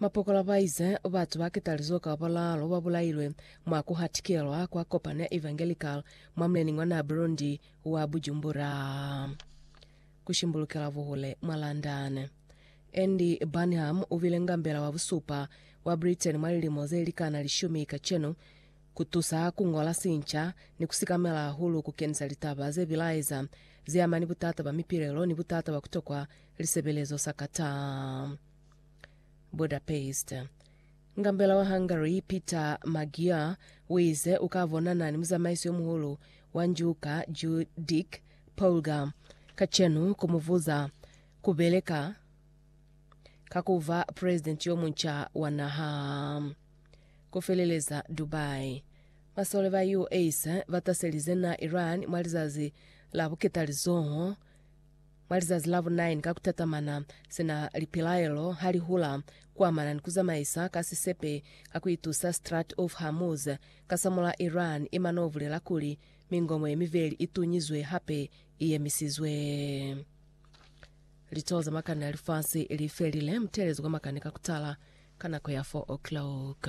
Mapokola ba ize, Batu ba ketalizo ka balalu ba bulailwe mwa ku hatikelwa kwa kopano ya Evangelical mwa mulening wa naha Burundi wa Bujumbura, ku shimbulukela buhule mwa London. Andy Burnham u bile ngambela wa busupa wa Britain mwa lilimo ze likana lishumi kacenu, ku tusa ku ngola sinca ni ku sikamela hahulu ku kenisa litaba ze bilaeza ze ama ni butata ba mipilelo ni butata ba ku tokwa lisebelezo sakata. Budapest. Ngambela wa Hungary, Peter Magyar, uize uka bonana ni muzamaiso yo muhulu wa njuka Judic Polgar kacenu kumuvuza kubeleka ka kuva president yo munca wa naha. Kufeleleza Dubai. Masole ba US bataselize na Iran mwa lizazi la buketalizoho Mwa lizazi la bu 9 ka kutatamana, sina lipilaelo ha li hula kuamana ni kuzamaisa ka sisepe ka kuitusa Strait of Hormuz, kasamul'a Iran ima no bulela kuli mingomo ye mibeli i tunyizwe hape i yemisizwe. Litoho za makani a lifasi li felile, mutelezo kwa makani ka kutala ka nako ya 4 o'clock.